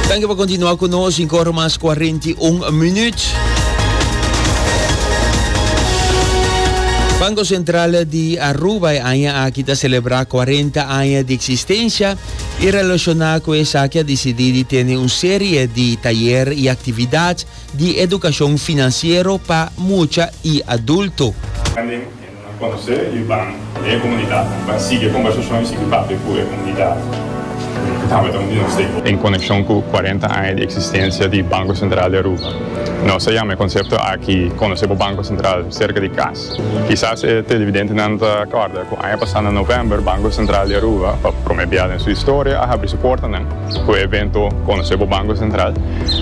Thank you pa continua cu nos, 5 ora mas 41 minuut. Banco Central di Aruba e aña aki ta celebra 40 aña di existencia y relaciona cu esaki a decidi di tene un serie di tayer y actividad di educacion financiero pa mucha y adulto. Nan conoce y ban den e comunidad. Nan ban sigui e conversacion y sigui papia cu e comunidad cu tabata un di nos stakeholders. En conecion cu cuarenta aña di existencia di Banco Central di Aruba, nos a yama e concepto aki Conoce bo Banco Central cerca di cas. Kisas e televidentenan ta acorda cu aña pasa na november Banco Central di Aruba pa prome bia den su historia a habri su portanan cu e evento Conoce bo Banco Central.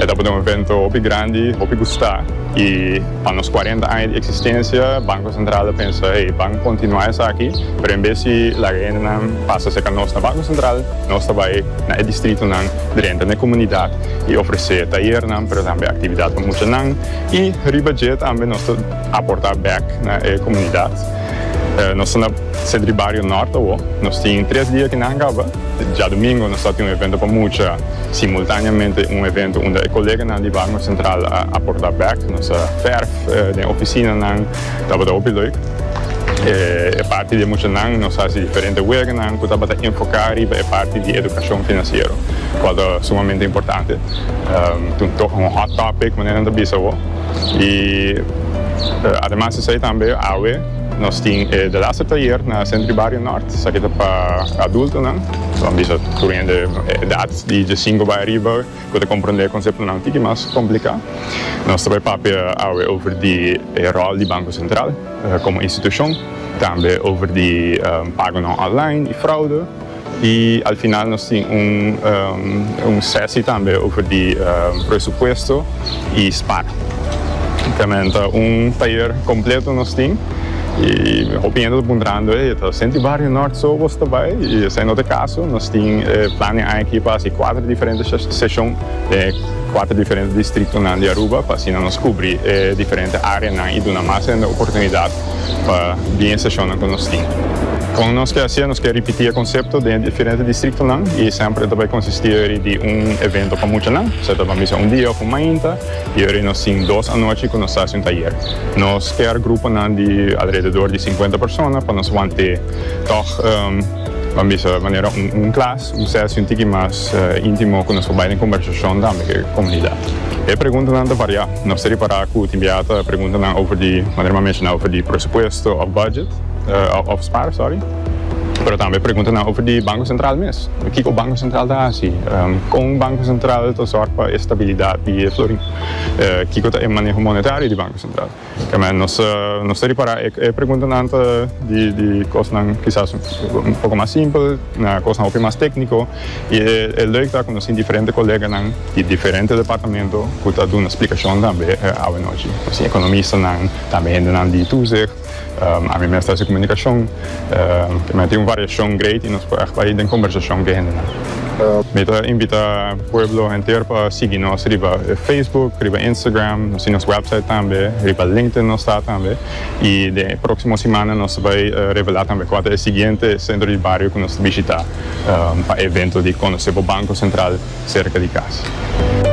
E tabata un evento hopi grandi, hopi gusta y. Pa nos cuarenta aña di existencia Banco Central a pensa hey ban continua esaki pero en bes di laga hendenan pasa cerca nos na Banco Central nos ta bay na e distritonan drenta na e comunidad y ofrece tayernan pero tambe actividad pa muchanan y riba dje tambe nos ta aporta bek na e comunidad nos ta na Centro di Bario Norte awo nos tin tres dia kinan caba. Djadumingo nos a tin un evento pa mucha, simultaneamente un evento unda e koleganan di Barnum Central a aporta bek nos a verf den oficinanan, tabata hopi leuk. E parti di e muchanan nos hasi diferente weganan cu tabata enfoca riba e parti di educacion financiero, cual ta sumamente importante. Ta un to un hot topic manera nan ta bisa awo y ademas di esey tambe awe, Nos tin e Delasta Tayer na Centro di Bario Nort, esaki ta pa adultonan, so a bisa tur un hende edad di diesinco bay ariba cu ta comprende e conceptonan un tiki mas complica. Nos ta bay papia awe over di e rol di Banco Central como institucion, tambe over di pagonan online y fraude. Y al final nos tin un sesi tambe over di presupuesto y spar. Temen ta un tayer completo nos tin y hopi hende ta puntrando hey ta senti Barrio Nort so bos ta bay? Y esai no ta e caso, nos tin plan den aña aki pa haci cuater diferente seshon den e cuater diferente distritonan di Aruba pa asina nos cubri e diferente areanan y duna mas hende oportunidad pa bin e seshonnan ku nos tin. Kon nos ke hasié? Nos ke ripití e konsepto den e diferente distriktonan i semper e ta bai konsistí ori di un evento pa muchanan, kusé ta ban bisa un dia òf un mainta, i ori nos tin dos anochi ku nos ta hasi un tayer. Nos kèr gruponan di alrededor di sinkuenta persona pa nos want'é tòg, ban bisa manera un klas. Usted a sinti ki mas intimo cu nos ta bay den conversacion tambe cu e comunidad. E preguntanan ta varia. Nos ta repara cu tin bia ta preguntanan over di, manera mi a menciona, over di presupuesto of budget, of spaar, sorry, pero tambe preguntanan over di Banco Central mes. Kico Banco Central ta haci? Con Banco Central ta zorg pa e stabilidad di e florin? Kico ta e maneho monetario di Banco Central? Amen. Nos nos ta ripará e e preguntanan ta di di kosnan kisas un poko mas simpel na kosnan hopi mas tékniko i e e lèuk ta ku nos tin diferente koleganan di diferente departamento ku ta duna splikashon tambe awanochi. Nos tin ekonomistanan, tambe hendenan di Toezicht, ami mes ta hasi komunikashon. También tin un variacion great y nos por echt bay den conversacion cu e hendenan. Mi ta invita pueblo henter pa sigui nos riba Facebook, riba Instagram, nos tin nos website tambe, riba LinkedIn nos ta tambe y den e proximo simana nos ta bay revela tambe cua ta e siguiente centro di bario cu nos ta bishita pa e evento di Conoce bo Banco Central cerca di casa.